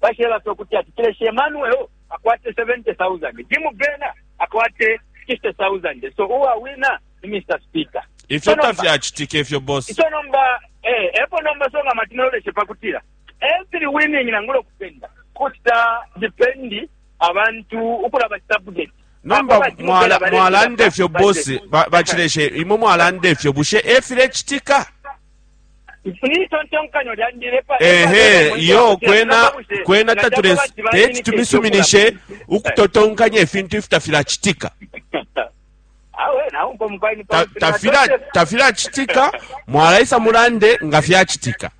Basheba fye ukuti ati Kilesi Emmanuel akwate 70,000, Jim Brenner akwate 60,000, so uwawina ni Mr. Speaker. Ifyo tafyacitike ifyo boss. Ico nomba eh epo nomba so nga matino leshe pakutira. Every winning nangulo kupenda. Kusta depend abantu ukulaba subject. Nomba mwala mwalande fyo boss bachileshe ba imwe mwalande fyo bushe efile chitika. ehe iyo kwena kwena tatule teti tumisuminishe ukutotonkanya ifintu ifi tafilacitika tafilacitika mwalaisa mulande nga fyacitika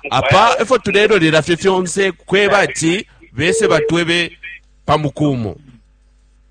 apa efo tulelolela fye fyonse kweba ati bese batwebe pamukumo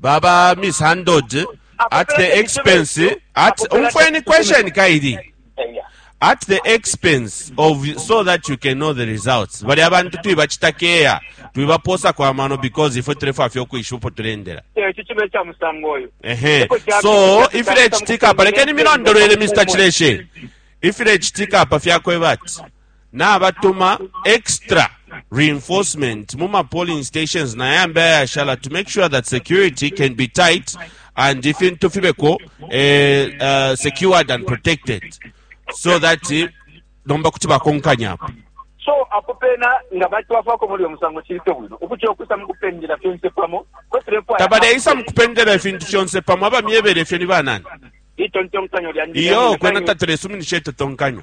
baba misandod at the expense at umfweni question kaili at the expense of so that you can know the results bali abantu twibachita keya twibaposa kwa mano because ifwe tulefwa fyo kwishupo tulendera ekyo kino ekya musango oyo ehe so ifile chitika palekeni milondolwele mr chileshe ifile chitika pa fyakweba ati nabatuma extra reinforcement mu ma polling stations na yambi ayashala to make sure that security can be tight and ifintu fibeko eh, uh, secured and protected so that eh, nomba kuti bakonkanyapo so apo pena nga batwafako muli omusango kirite bwino okutya okusa mukupendera fyonse pamo tabaleisa mukupendera efintu fyonse pamo abamyebere efyo ni banani itontonkanyo lyandi iyo kwena tatulesuminisha etotonkanyo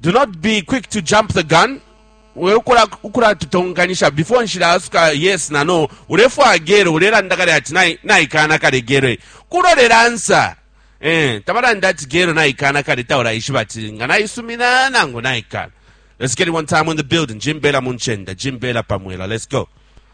Do not be quick to jump the gun. We ukula ukula tutonganisha before nshila asuka yes na no. Ulefwa gero ulelanda kale ati nai naikana kale gero. Kulo le answer. Eh, tabalanda ati gero naikana kale taula ishiba ati nga naisumina nangu naikana. Let's get it one time in the building. Jim Bela Munchenda, Jim Bela Pamwela. Let's go.